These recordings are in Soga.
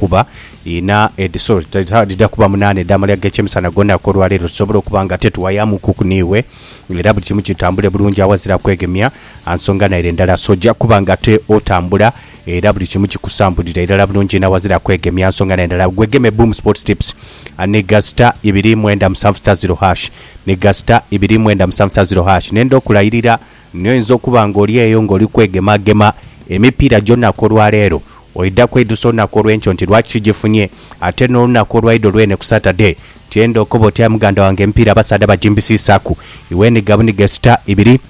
Kuba inha edhi, sorry, dhidha kuba munaana edh'amalya ag'ekyemisana gonha k'olwa leero, tusobole okuba nga ate tuwayamukuku n'iwe, era buli kimu kitambule bulungi aghazira kwegemya a nsonga naire ndala. So oja kuba nga ate otambula era buli kimu kikusambulira irala bulungi inho aghazira kwegemya a nsonga naire ndala. Gwegeme Boom Sports Tips ni gha star ibiri mwenda musanvu star ziro hash, ni gha star ibiri mwenda musanvu star ziro hash. Nenda okulayirira Naye oinza okuba nga oli eyo ng'oli kwegemagema emipiira gy'olunaku olwa leero. Oidha kweidusa olunaku olw'enkyo nti lwaki sigifunye, ate n'olunaku olwaidha olwene ku Saturday. Tyenda okobe oti, Aye muganda wange emipiira abasaadha bagimbisiisaaku iw'enhiga buniga esita ibiri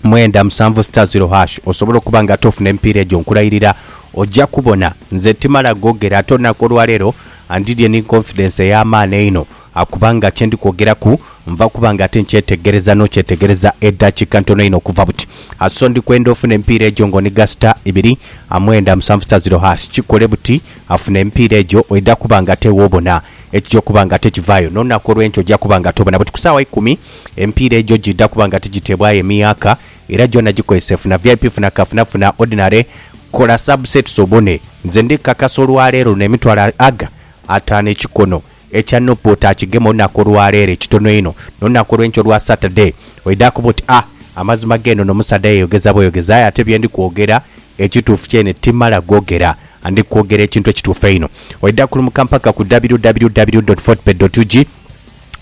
mwenda musanvu sita ziro hash. Osobola okuba nga tofuna emipiira egyo. Nkulairira oja kubona. Nze timala googera, ate olunaku olwa leero andidye ni confidence ey'amaani einho Akuba nga kye ndi kwogeraku nva kuba nga ate nkyetegereza n'okyetegereza edhakiika ntono inho okuva buti. Aso ndi kwenda ofune emipiira egyo nga oniga sita ibiri amwenda musanvu sita ziro haasi. Kikole buti afune emipiira egyo oidha kuba nga ate w'obona ekija okuba nga ate kivaayo. N'olunaku olw'enkya oja kuba nga tobona buti. Ku saawa ikumi emipiira egyo giidha kuba nga tigiteebwayo emiyaaka era gyona gikozese. Funa vip, funa kafuna, funa ordinary, kola subsets obone. Nze ndi kakasa olwaleero luno emitwalo aga ataano ekikono. Ekya Nup oti akigema olunaku olwaleero ekitono einho nolunaku olwenkya olwa Saturday oidha kuba oti ah amazima gee nono omusaadha yeyogeza bweyogeza aye ate byendi kwogera ekituufu kyene timala gogera and ndi kwogera ekintu ekituufu einho oidha kulumuka mpaka ku www.fortebet.ug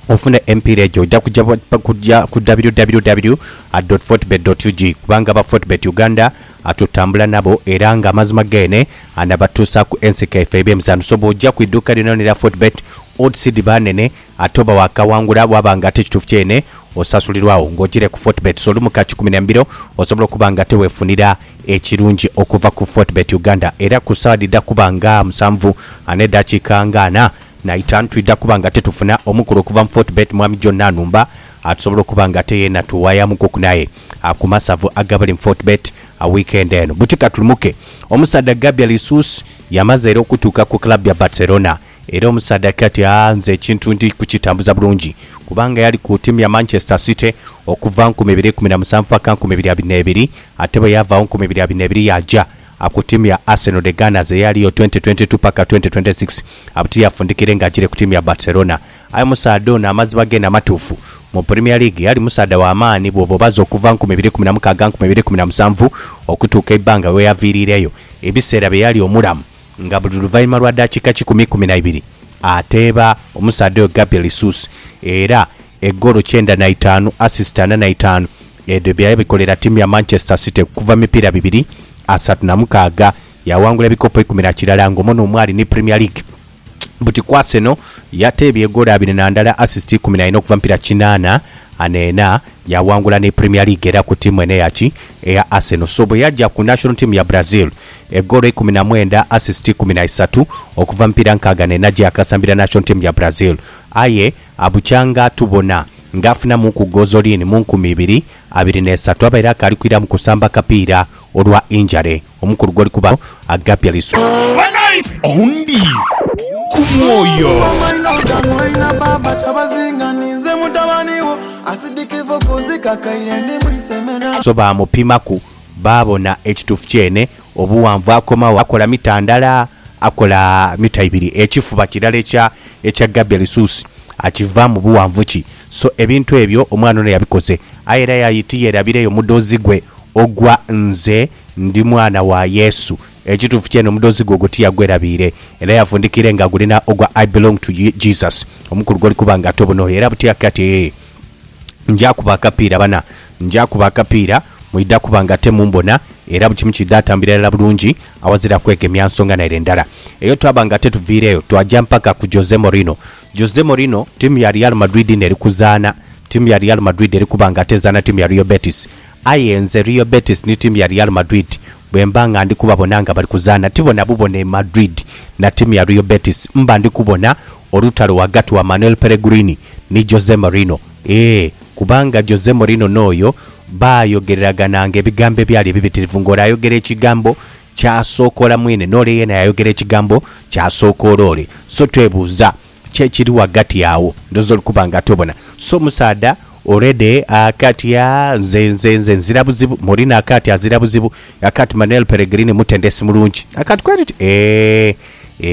ofune emipiira egyo oidha kugya ku www.fortebet.ug kubanga aba Fortebet Uganda Atutambula nabo era nga amazima geene anabatuusaaku enseko yaife ey'ebyemizaanho. So bw'oja ku idhuuka lyonalyona erya Fortebet, odds dhiba nhenhe ate oba waakawangula waaba nga ate kituufu kyeene osasulirwagho ng'ojiire ku Fortebet. So lumu ka kikumi na mbiro osobola okuba nga ate weefunira ekirungi okuva ku Fortebet Uganda. Era ku ssaawa dhidha kuba nga musanvu n'edhakiika nga ana n'eitaanu twidha kuba nga ate tufuna omukulu okuva mu Fortebet, Mwami John Nanumba atusobola okuba nga ate yeena tuwayamukuku naye. ku masavu agabali mu Fortebet wiikendi eno. Buti ka tulumoke. Omusaadha Gabriel Jesus yamaze era okutuuka ku club ya Barcelona era omusaadha akira ati aah nze ekintu ndi kukitambuza bulungi kubanga yali ku tiimu ya Manchester City okuva nkumi ibiri ikumi na musanvu paka nkumi ibiri abiri n'ebiri ate bwe yaavaagho nkumi ibiri abiri n'ebiri yaaja ku tiimu ya Arsenal The Gunners eyaliyo twenty twenty two paka twenty twenty six buti yafundikire ng'agiire ku tiimu ya Barcelona. Aye omusaadha ono amaziba geene amatuufu mu Premier League ali musaadha wa maani bw'oba obaze okuva nkumi ibiri kumi na mukaaga nkumi ibiri kumi na musanvu okutuuka eibbanga we yaviiriireyo, ebiseera bye yali omulamu nga buli luvainhuma lwa daakiika kikumi ikumi na ibiri ateeba. Omusaadha oyo Gabriel Jesus era egoolo kyenda na itaanu, assist ana na itaanu edho bye yabikolera ttiimu ya Manchester City okuva mu mipiira bibiri asatu na mukaaga yaawangula ebikopo ikumi na kirala ng'omo n'omu ali ni Premier League. buti ku Arsenal yateebye egoolo abiri na ndala, assist ikumi na ina okuva mu mipira kinaana na ena. Yaawangula ni Premier League era ku tiimu eno eya ki? Eya Arsenal. So bwe yaja ku national team ya Brazil, egoolo ikumi na mwenda, assist ikumi na isatu okuva mu mipira nkaaga na ena gye yakasambira national team ya Brazil. Aye abukyanga atubona nga afunamuuku gozolini mu nkumi ibiri, abiri n'esatu abaire akaali kwiramu kusamba kapiira olwa injury. Omukulu gw'oli kubagho agapya liswa. Ondi ku mwoyo. So baamupimaku baabona ekituufu kyene obuwanvu akomawo akola mita ndala akola mita ibiri ekifuba kirala ekya ekya Gabia Lisuusi akivaamu buwanvu ki? So ebintu ebyo omwana ono yabikoze aye era yayitiya erabireyo mudhozi gwe ogwa nze Ndi mwana wa Yesu. Ekituufu kyene omudhozi gwe ogwo tiyagwerabiire, era yafundikiire nga agulina ogwa I belong to Jesus. Omukulu goli kuba nga tobonooyo era buti ake ati ee. Nja kuba akapiira bana, nja kuba akapiira, mwidha kuba nga temumbona era buli kimu kiidha tambulira irala bulungi awazira kwegemya nsonga naire ndala. Eyo twaba nga tetuviireeyo, twaja mpaka ku Jose Mourinho. Jose Mourinho, tiimu ya Real Madrid n'eri kuzaana, tiimu ya Real Madrid eri kuba nga ate ezaana tiimu ya Real Betis. Aye nze Real Betis ni tiimu ya Real Madrid bwe mba nga ndi kubabona nga bali kuzaana ti bona bubona e Madrid na tiimu ya Real Betis mba ndi kubona olutalo ghagati wa Manuel Pellegrini ni Jose Mourinho ee kubanga Jose Mourinho n'oyo baayogereragananga ebigambo ebyali ebibitirivu ng'ole ayogera ekigambo ky'asookola mwene n'ole yeena yaayogera ekigambo ky'asookola ole so twebuuza Ki ekiri ghagati agho? Ndhooza oli kuba nga tobona. So musaadha already akatya nze nze nze nzira buzibu. Mourine akatya azira buzibu. Akati Manuel Peregrini mutendesi mulungi. Akati kweri oti? Eeh eeh.